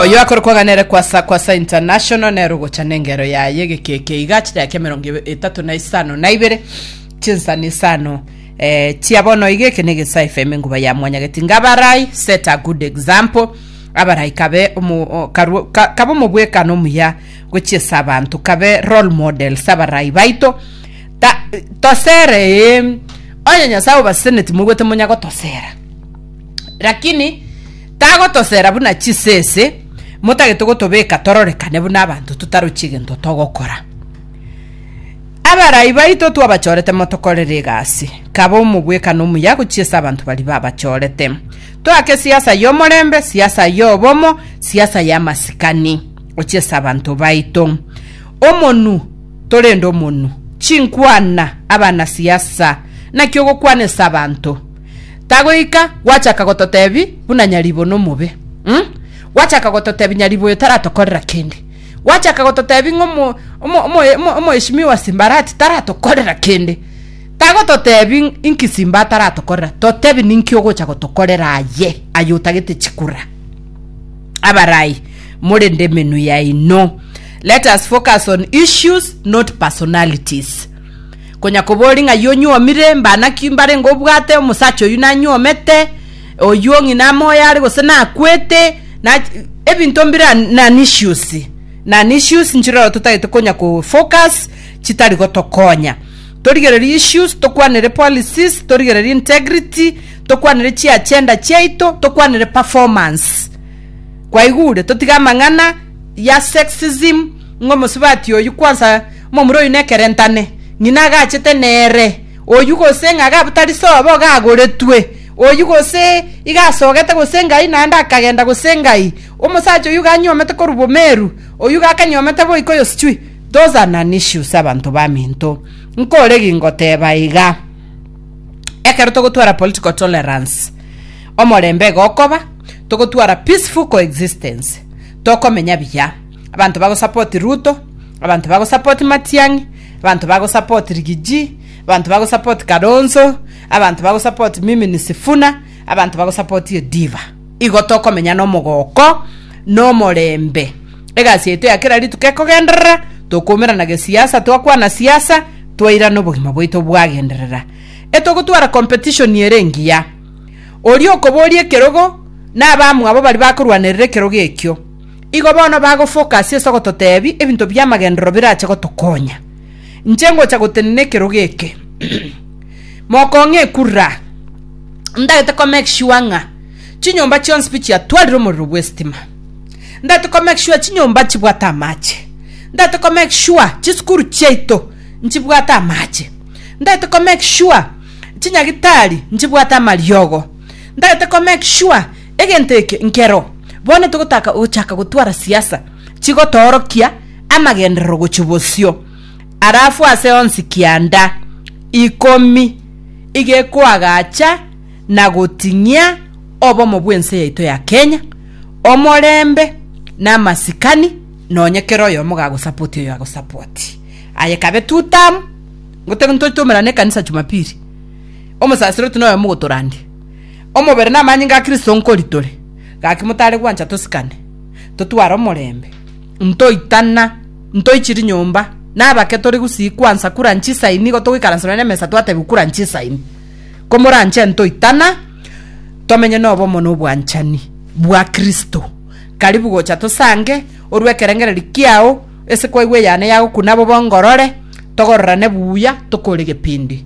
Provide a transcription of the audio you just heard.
Oyo akore kwang'ana ere kwasa kwasa international nero gocha nengero yaye gekeke iga chidaika emerongo ebe- etato na isano na ibere chinsani isano eh, chia bono iga eke negesa fm enguba ya mwanyageti ngabarai set a good example abarai kabe omo- o- karu- ka- kabe omobwekano omuya gochiesa abanto kabe role models abarai baito Ta- tosere eh, onye nyasae obaseneti mogwete monya gotosera Lakini tagotosera buna chisese, motagete gotobeka tororekane buna abanto totarochi egento togokora. Abarai baito twabachorete motokorere egasi, kaba omobwekano omuya gochia ase abanto baria babachorete. Toake siasa y'omorembe, siasa y'obomo, siasa y'amasikani gochia ase abanto baito. Omonu torende omonu, chinkwana, abana siasa, naki ogokwana ase abanto. Tagoika gwachaka gototebi buna nyaribo nomobe, um, gwachaka gototebi nyaribo oyo taratokorera kende, gwachaka gototebi ng'a omo, omo, omo, omo, omoeshimiwa Simbarati taratokorera kende. Tagototebi inki Simba ataratokorera, totebi ninki ogocha gotokorera aye, aye otagete chikura. Abarai, more ndemenwa yaino. Let us focus on issues, not personalities. Konya kobori ng'ai onyuomire, mba naki mbare ngobwate omosacha oyio nanyuomete, oyio ng'ina amoyo are gose nakwete, na ebinto mbira nani issues nani issues nchirora totagete konya ko focus chitari gotokonya. Torigererie issues, tokwanere policies, torigererie integrity, tokwanere chiagenda chiaito, tokwanere performance. Kwaigure? Totige amang'ana ya sexism, ng'omosubati oyio kwansa Momura oyio nekerentane, ng'ina agachete nere oyio gose ng'a ga tari sobo gagoretwe oyio gose iga asogete gose ngai naende akagenda gose ngai omosacha oyio iga anyuomete korwa bomeru oyio iga akanyuomete boika oyo sichwi those are non issues abanto baminto nkore gingoteba iga ekero togotwara political tolerance omorembe iga okoba togotwara peaceful coexistence tokomenya buya. Abanto bagosapoti Ruto, abanto bagosapoti Matiang'i, abanto bagosapoti Rigiji, abanto bagosapoti Kalonzo, abanto bagosapoti mimi ni Sifuna, abanto bagosapoti Odiva. Igo tokomenya nomogoko na omorembe. Egasi yaito ya kera rituko ekogenderera, tokoumerana gesiasa, twakwana siasa, twairana obogima bwaito bwagenderera. Etogotwara competition ere engiya. Oria okoboria ekerogo na abamwabo baria bakorwanerera ekerogo ekio. Igo bono bagofoka ase iso gototebi ebinto bi'amagenderero birache gotokonya. Inche ngocha gotenena ekerogo eke. Mokong'e ekurura. Ndagete ko make sure ng'a chinyomba chionsi pi chiatwarire omorero bw'esitima. Ndagete ko make sure chinyomba nchibwate amache. Ndagete ko make sure chisukuru chiaito nchibwate amache. Ndagete ko make sure chinyagitari nchibwate amariogo. Ndagete ko make sure. Egento eke nkero bono togotaka ogochaka gotwara siasa chigotoorokia amagenderero gochia bosio. Alafu ase onsi kianda ikomi igekoagacha na goting'ia obomo bw'ense yaito ya Kenya, omorembe na amasikani nonye kera oyomo gagosapoti oyo agosapoti. Aye ekabe two term ngote ntoche tomerane ekanisa Jumapili. Omosasiroto noyomo ogotorandia. Omobere namanyinga a Kristo nkori tore, gaki motare gwancha tosikane, totware omorembe, ntoitana, ntoichi rinyomba, nabake tore gusii kwansa kura nchisaini, nigo togoikaransa nonye nemesa twatebiwa kura nchisaini. Komoranche ntoitana, tomenye nobomo na obwanchani bwa Kristo. Karibu gocha tosange, orue ekerengererio kiao, ase kwaigwa eyane yago, kuna bobe ongorore, togororane buya, tokore egepindi.